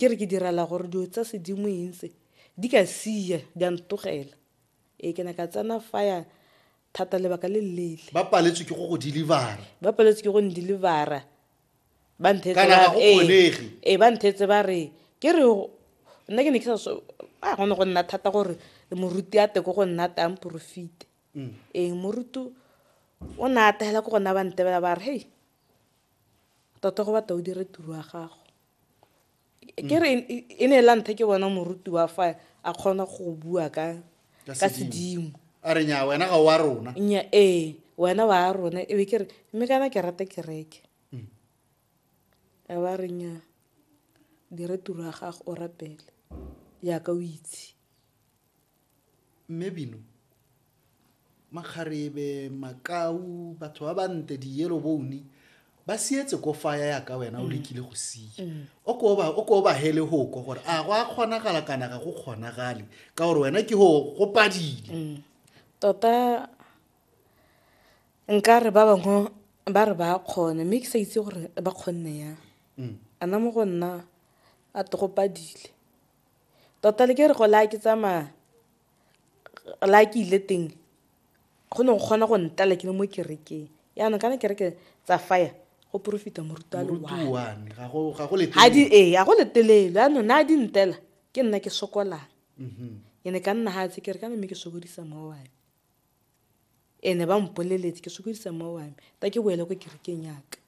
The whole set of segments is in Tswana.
Ke re ke direla gore dilo tsa sedimo eng tse, di ka siya, di a ntogela. Ee, ke ne ka tsena faya thata lebaka le le leele. Ba paletswe ke go go deliver-a. Ba paletswe ke go n-deliver-a. Ba nthetse ba re. Kana ga go kgonege. Ee, ba nthetse ba re, ke re nna ke ne ke sa so, ah go ne go nna thata gore moruti a tle ko go nna a tle a mporofite. Ee, moruti o ne a ate hela ko go nna ba ntebela ba re, hei, tota go batla o dire tiro ya gago. ke re e ne la nthe ke bona moruti wa fa a kgona go bua ka ka sedimo a re nya wena ga wa rona nya ee wena wa rona e be ke re mme kana ke rata kereke mm. a ba re nya dire tiro ya gago o rapele yaka o itse Mme Bino, makgarebe, makau, batho ba bante, di-yellow bone, ba sietse ko faya ya ka wena o lekile go sia o ko ba- o ko ba hele hoko gore a go a kgonagala kana ga go kgonagale ka gore wena ke go go padile tota nka re ba bangwe ba re ba kgone mme ke sa itse gore ba kgonne yang ana mo go nna a togopadile Tota le ke re go la ke tsamaya la ke ile teng go ne go kgona go ntala ke le mo kerekeng yaanong kana kereke tsa fire go profita moruta loane ga go letelelo yaanong ne a di ntela ke nna ke sokolang mm-hmm. e ne ka nna ga tse kere kana mme ke sokodisa mma wame ene ba mpoleletse ke sokodisa mma wame ta ke boele ko kerekeng yaka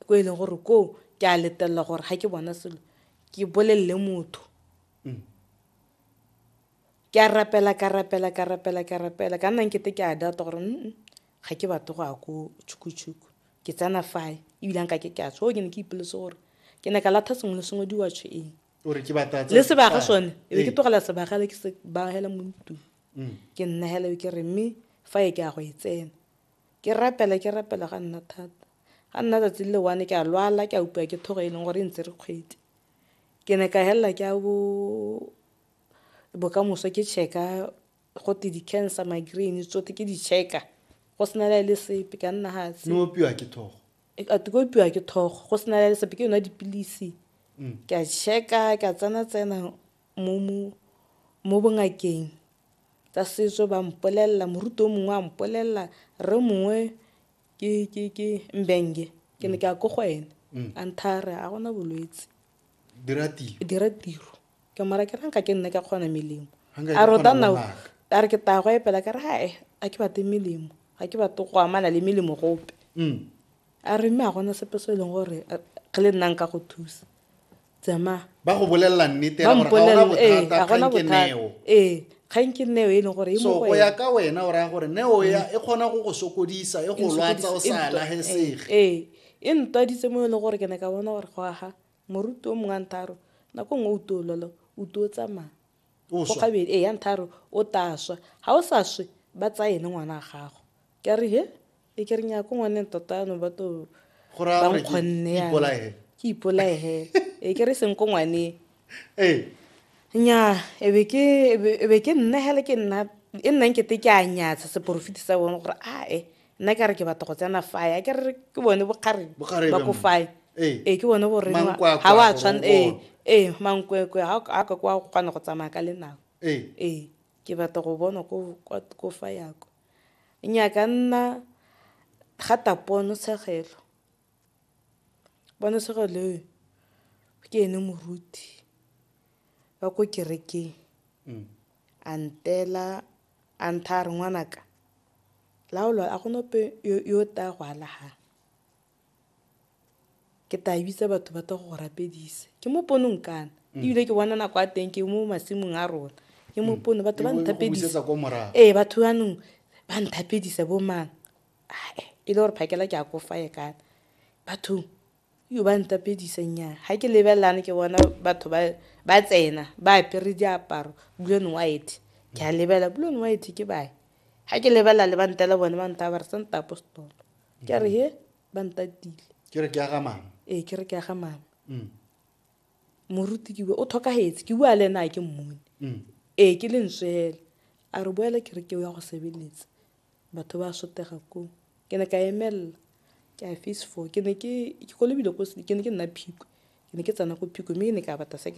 ko e leng gore koo ke a letelela gore ga ke bona selo ke bolelele motho mm. ke a rapela ka rapela ka rapela ka rapela ka nna nkete ke a data gore mm ga ke batle go ya ko tšhukutshuku ke tsena fae ebile nka ke ke a tsho ke ne ke ipolese gore ke ne ka latha sengwe le sengwe diwatsho eng le sebaga sone e be ke tlogela sebagale ke se bagela mo ntlong mm. ke nnagela ke re mme fa e ke ya go e tsena Ke rapela, ke rapela ga nna thata. Ga nna tsatsi le one ke a lwala, ke a upiwa ke thogo e leng gore e ntsere kgwedi. Ke ne ka helela ke a bo bokamoso ke check-a gote di-cancer, migraine tsotlhe ke di check-a go sena le le sepe ka nna fatshe. Ne opiwa ke thogo? Ate ke opiwa ke thogo go sena le le sepe ke nwa dipilisi ke a check-a ke a tsena tsena. mo bongakeng tsa setso ba mpolelela moruti o mongwe a mpolelela rre mongwe ke mbenge ke ne ke ya ko go ene mm. a nthare a gona bolwetse dira tiro ke mara ke ranka ke nne ka kgona melemo a rota nao a re ke taya go epela ka re gae a ke bate melemo ga ke bate go amana le melemo gope mm. A re mme a gona sepe se e leng gore re le nna nka go thusa tsamaya ba go bolelela nnete ba gona bothataeo ee kgang ke neo e leng gore e so go ya ka wena o raya gore neo ya e kgona go go sokodisa e go lwatsa o sa lagesege ee e ntwaditse mo e leng gore ke ne ka bona gore go aga moruti o mongwe a ntharo nako nngwe o tuololo o tuo tsamaya go gabedi ee ya ntharo o taswa ga o sa swe ba tsaye le ngwana a gago ke re he e ke re nya ko ngwaneng tota ano ba to ba nkgonne ya ke ipolaege e ke re seng ko ngwaneng ee nya e be ke e be ke nna hele ke nna e nnang ke te ke a nyatsha seporofiti sa bone gore a e nna ke re ke batla go tsena fae a ke re ke bone bokgareng ba ko fae ee eh, ke bone gore ga wa tshwana ee ee mankwekwe ga a ka kwa kgona go tsamaya ka lenao ee eh, ke batla go bona ko fa yako Nnyaa ka nna rata ponotshegelo, ponotshegelo eo ke ene moruti wa ko kerekeng a ntela a ntha a re ngwanaka laolo a gona ope yo o tla go alagang. ke tla bitsa batho ba tla go rapedisa ke mo ponong kana mm. ebile ke bona nako a teng ke mo masimong a rona ke mo mm. pono batho ba nthapedisa ee batho banong ba nthapedisa bo mang ae e le gore phakela ke a kofaye kana bathong yo ba ntapedisa nyaa ga ke lebelelane ke bona batho ba tsena ba apere diaparo blue and white ke a lebelela blue and white ke bae ga ke lebelela le ba ntela bone ba ntabare sa ntapo setolo ke a re he ba ntatile ke re ke aga mama ee ke re ke aga mama mm. moruti ke bue o tlhokagetse ke bua le ena a ke mmone mm. ee ke le ntswe fela a re boela ke re ke o ya go sebeletsa batho ba sotega koo ke ne ka emelela ke a face four ke ne ke kolobile ke ne ke nna phikwe ke ne ke tsena ko phikwe mme ke ne ka bata second